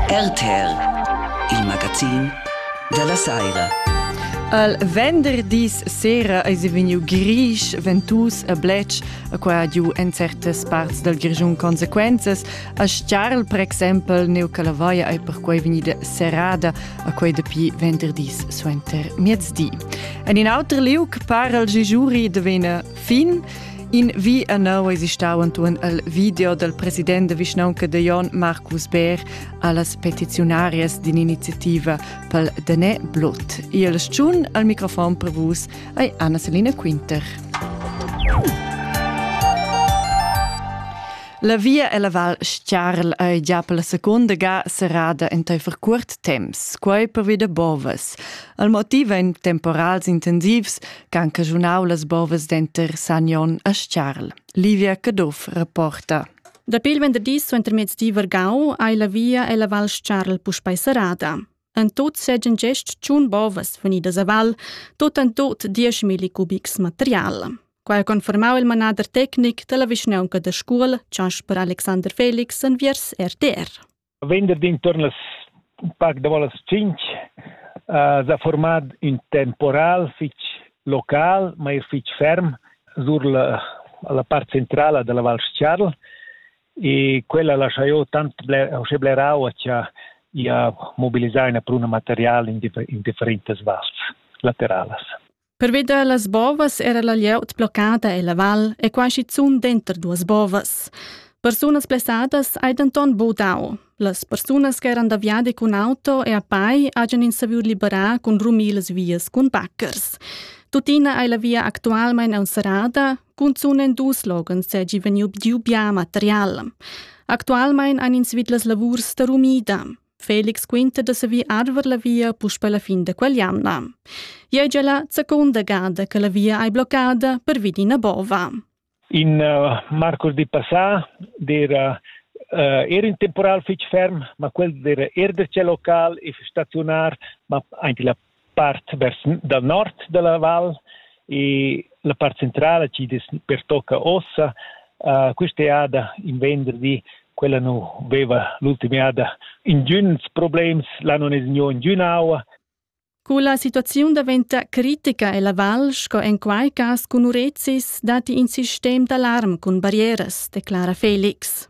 RTR, il magazin da la saira. Al venderdis sera eis vegniu grisch, ventus e bletsch, a qua ha giu en certas parts dal Grischun consequenzas. A Stiarl, per exempel, neu Calavaia ei perquei vegnida serrada a quei dapi venderdis suenter miezdi. En in auter liug para il Gijuri de vena Fin in vi annau eis stau antuon el video del president de vischnaunca de Jon Marcus Bär allas petiziunarias d'ininiziativa pel Denè Blut. Il schun al microfon per vus ei Anna-Selina Quinter. La via e la val Stiarl ei già per la seconda ga serrada enteifer curt temps, quei per vida bovas. Il motiv ein temporals intensivs, ch'han caschunau las bovas denter Sagnon e Sciarl. Livia Caduff reporta. Dapi il venderdi suentermiezdi vargau ei la via ella Val Sciarl puspei serrada. En tot segan gest tschun bovas funidas a val, tot en tot 10.000 cubics material. Quai ha confermau il manader tecnic dalla vischnaunca da Scuol, Jasper Alexander Felix, enviers RTR. venderdi inturn las un pac davo las tschinch uh, s'ha formad ün temporal fich local, ma eir fich ferm, sur la, la part centrala della Val Scharl e quella laschajo tant bler, uschè blerau cha ia mobilisà üna pruna material in, differ in differentas vals lateralas. Pervi da las bovas era la glieud bloccada e la val è quai schizunt denter duas bovas. Persunas blessadas hai denton bu dau. Las persunas che eran da viadi cun auto e a pai hajan ins saviu liberar cun rumir las vias cun baccers. Tuttina ei la via actualmein enserrada, cunzun en dus loghens seigi vegniu giu bia material. Actualmein han ins vid las lavurs da rumida. Felix quinta da savir arver la via puspe la fin da quell'anna. Ia è la seconda gada che la via è bloccada per Vidina Bova. In uh, marcos di passà era uh, era in temporal fitch ferm, ma quel era er der ce local e stationar, ma anche la part vers dal nord da la val e la part centrala chi'd es pertocca ossa uh, quista jada in venderdi quella nu veva l'ultima jada ingüns problems, là non es gnü ingün aua. Cu la situaziun daventa critica e la val, sco en quai cas cun urezis, datti in sistem d'alarm cun barrieras, declara Felix.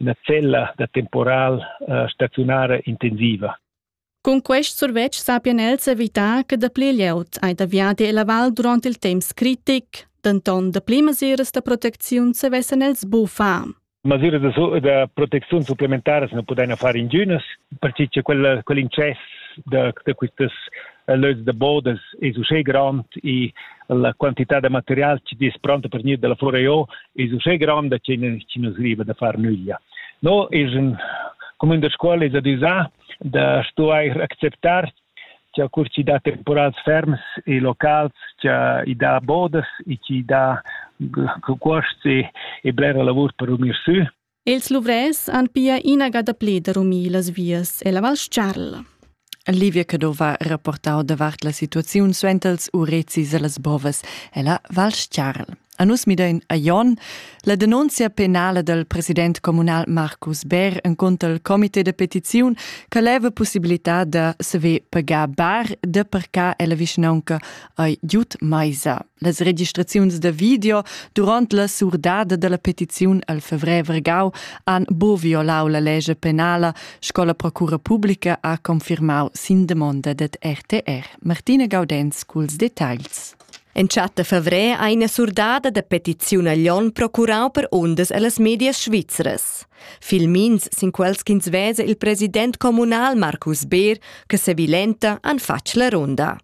ina cella da temporal uh, staziunara intensiva. Cun quest survetsch sappian els evitar che dapli glieud ei da viadi ella val durant il temps critic, denton dapli mesiras da protecziun savessan els buffar. Masiras da, da protecziun supplementare se ne podevano fare ingünas, perché che quel, quell'incesso da, da quistas eh, lös da bodas es uschè grand e la quantità da material che is pronto per gnir dalla Floreo es uschè gronda che chi nu sriva da far nüglia. No es un comün da scuola es adüsà da stuair acceptar cha cur chi dà temporals ferms e locals cha i dà bodas e chi dà cuosts e, e blera lavur per unir sü Els luvrers han pia inaga dapli da rumir las vias e la Val Stgarl. Livia Cadova rapportau davart la situaziun suentels urezis e las bovas ella Val Stgarl. A nus midein a Jon la denunzia penala del president comunal Marcus Bär en conto al comité de petiziun che leva possibilità da se ve pagar bar de parcar ella vischnaunca ei Jut Meisa. Las registraziuns da video durant la surdada dalla petiziun al fevrer gau han bo violau la lege penala, sco la procura publica ha confirmau sin demonda dad RTR. Martina Gaudenz culs detagls. Entschatta fevrer ha ina surdada da petiziun a Lyon procurau per ondas allas medias svizras. Filmins sin quels ch'ins vesa il president communal Marcus Beer che sevilenta han fatg la ronda.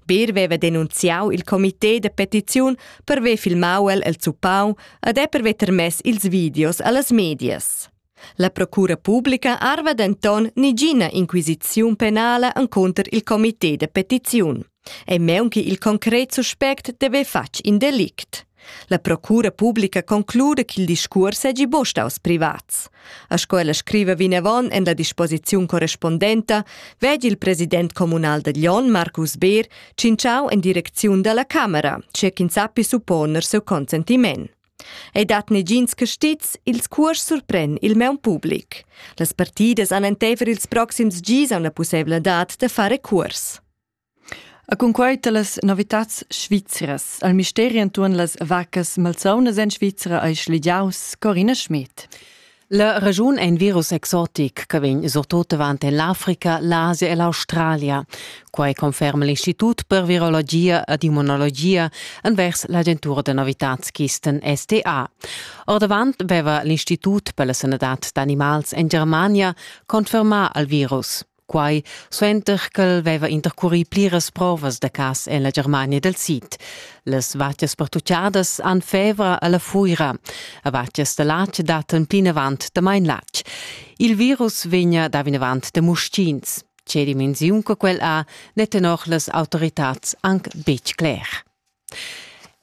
Bir veva denunziau il comité de petiziun per ver filmau el el zuppau ed è per ver termess ils videos allas medias. La procura publica arva denton nigina inquisiziun penala encunter il comité de petiziun. E meunchi il concret suspect deve fatg in delict. La procura publica concluda ch'il discuors seigi buca staus privats. A sco ella scriva vinavon en la disposiziun correspondenta, vegli il president communal da Glion, Marcus Beer, tschintschau en direcziun dalla Camera, tge ch'ins sappi supponer seu consentiment. Ei dat negins castits, ils cuors surpren il meun public. Las partidas han enteifer ils proxims gis auna pusseivladad da fare cuors. E cunquei talas novitads svizras al misteri entuorn las vaccas malsaunas en Svizra ei schligiaus Corina Schmid. La regiun è in virus exotic che vegn surtut avant l'Africa, l'Asia e l'Australia. Quai conferma l'Istitut per virologia ed immunologia envers l'agentura da novitatschisten STA. Ordavant aveva l'Istitut per la sanadad d'animals en Germania confermà al virus. quai suenter ch'el veva intercurì pliras provas da cas en la Germania dal Sid. Las vatgas pertuccadas han fevra a la fuira. A vatgas da latg dattan plinavant damain latg. Il virus vegna da vinavant da muschins. Tge dimensiun che quel ha, n'è tenor las autoritads anc betg cler.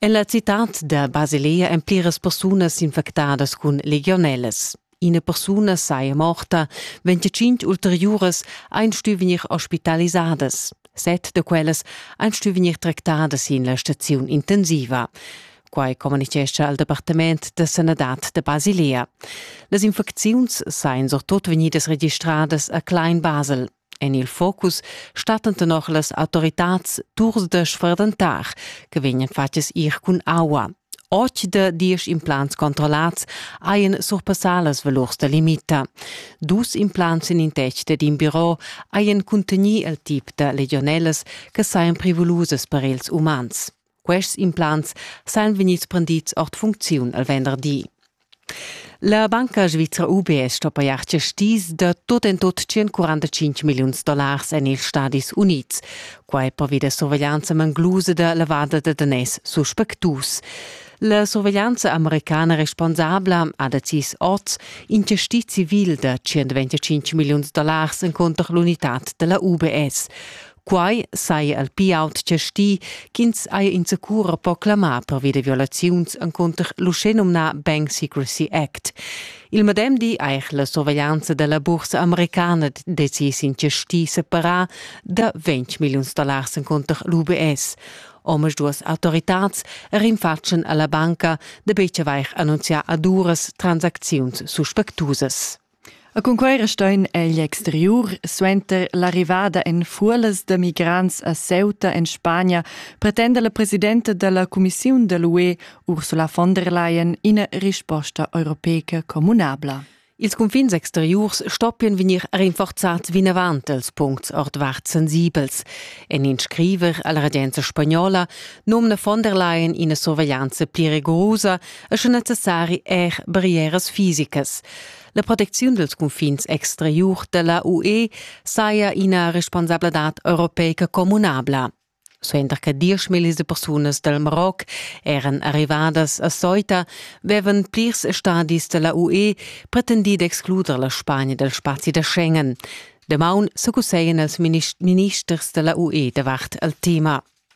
En la citad da Basilea èn pliras persunas infectadas cun legionellas. Ina persuna saja morta, ventginc ulteriuras ein stuì vegnir ospitalisadas. Set da quellas ein stuì vegnir tractadas sin la staziun intensiva. Quai communitgescha al Departament da sanadad da Basilea. Las infecziuns sajan surtut vegnidas registradas a Klein Basel. En il focus stattan tenor las autoritads turs da sferdentar che vegnan fatgs ir cun aua. Otg da diesch implants controllats hajan surpassà las valurs da limita. Dus implants en in tec dad in biro hajan cuntegnì il tip da legionellas che sajan privulusas per ils umans. Quests implants sajan vegnids prendids ord funcziun al venderdi. La banca svizra UBS sto pajar gestis da tot en tot 145 milliuns dollars en ils Stadis Unids. Quai pervi da surveglianza manglusa da lavada da daners suspectus. La surveglianza americana responsabla ha decis oz in gestit civil da 125 milliuns dollars encunter l'unitad da la UBS. Quai saja il pli aut chastì ch'ins haja insacura po clamar pervi da violaziuns encunter l'uschenumnà Bank Secrecy Act. Il medem di eich la surveglianza da la bursa americana decis in chastì separà da 20 milliuns dollars encunter l'UBS. Omas duas autoritads rinfatschen alla banca da betg avair annunzià ad uras transacziuns suspectusas. E cun quei restein egl exteriur suenter l'arrivada en fuolas da migrants a Ceuta en Spagna pretenda la presidenta dalla cumissiun da l'UE Ursula von der Leyen ina risposta europeica communabla. Ils confins exteriurs stoppian vegnir rinforzats vinavant els puncts ordvart sensibels. En in scriver alla regenza spagnola nomna von der Leyen ina surveglianza pli rigorosa e sche necessari er barrieras fisicas. La protecziun dels confins exteriur della UE saja ina responsabladad europeica communabla. Suenter che diesch millis de persunas del Maroc eran arrivadas a Ceuta, vevan plirs stadis della UE pretendi d'excluder la Spagna del spazi da Schengen. Damaun se cusseien els ministers della UE davart al tema.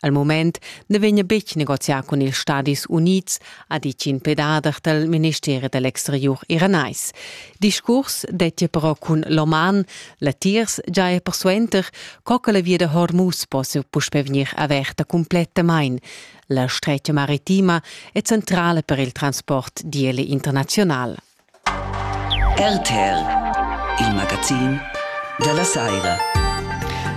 al mument na vegna betg negozià cun ils Stadis Unids, ha ditg in pedader dal ministeri da l'exteriur iranais. Discurs dettia però cun l'Oman, latiers giaja persuenter, co che la via da Hormuz possia puspè vegnir averta cumplettamain. La stretga maritima è centrala per il transport d'IL internaziunal. RTL, il magazin da la saira.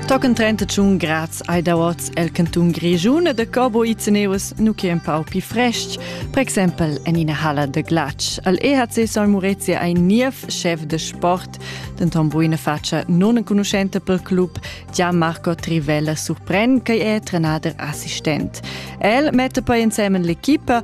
Tochen 31 Grad ai dauats el canton Grigiun e de Corbo Izeneus nu che un pau pi fresc, per exempel en ina halla de glatsch. Al EHC San Murezi ai niev chef de sport, denton buina faccia non enconuschente per club, Gianmarco Trivella surpren che è trenader assistent. El mette poi insemen l'equipa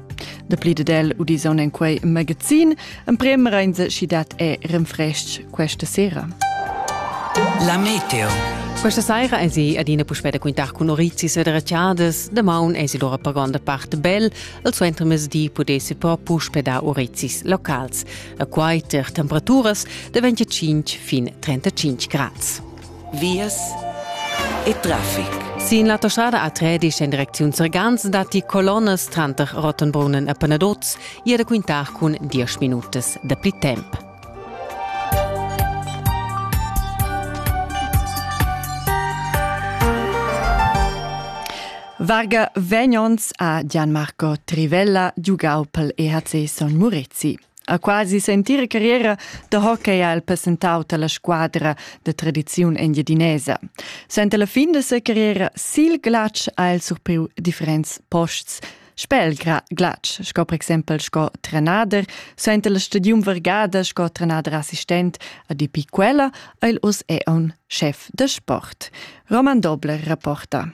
Dapli ed el udisan en quei magazin. Emprem reinse schi dat è renfrestg questa sera. La meteo. Questa sera è si adina puspè da quintar cun Orizis e Dracciadas. Damaun è si lora per gonda parte bel. Al suenter mesdi pudessi però puspè dar Orizis locals. A quai ter temperaturas da 25 fin 35 grads. vias e traffic. Sin l'autostrada A13 en direcziun Sergans datti colonnas tranter Rottenbrunnen e Penaduz. Ia da quintar cun 10 minutas da pli temp. Varga vegnons a Gianmarco Trivella giugau pel EHC Son Murezi. Ha quasi sentira carriera da hockey ha el passentau tala squadra da tradiziun engiadinesa. Senta la fin de sa carriera sil glatsch ha el surpriu differents posts. Spel glatsch, sco per exempel sco trenader, senta la stadium vergada sco trenader assistent, a depi quella, el us è un chef de sport. Roman Dobler rapporta.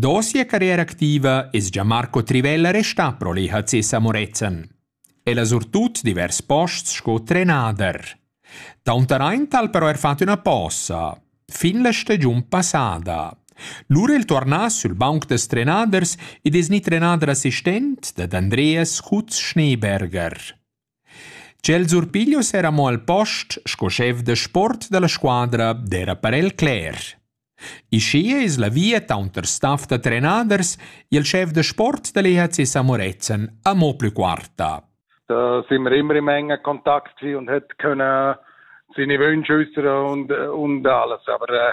Da sia carriera activa es gia Marco Trivella restà pro l'EHC Samorezen. El ha surtut divers posts sco trenader. Taunteraint ha'l però er fat üna posa fin la stagiun passada. Lura el tuornà sül banc da trenaders ed es gnit trenader assistent dad Andreas Kutz-Schneeberger. Ch'el surpiglio s'era mo al post sco schef da sport dalla squadra d'era per el cler. Ischia es la via taunter staff da trenaders e il schef da sport da l'EHC Samorezen amo plü quarta. Da sind wir immer in Menge Kontakt und hat können seine Wünsche äußern und, und alles. Aber äh,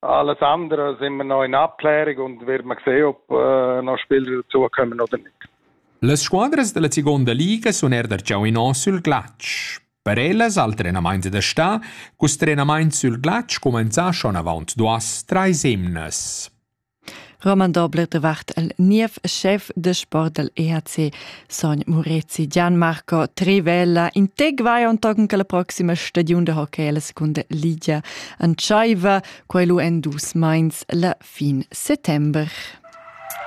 Allas andras immanò ina Plärigung vers Maxeop, no spel redaziun cheu nodernig. Las squadras dalla seguonda liga sun eir darcheu inò sül glatsch. Per ellas al trenamaint da stà cust trenamaint sül glatsch cumanzà schon avaunt duos, trais emnas. Roman Dobler davart el niev schef de sport dal EHC Sogn Murezi Gianmarco Trivella integuai ontochen che la proxima stagiun de hockey alla seconda ligia entscheiva quei lu en dus meins la fin settember.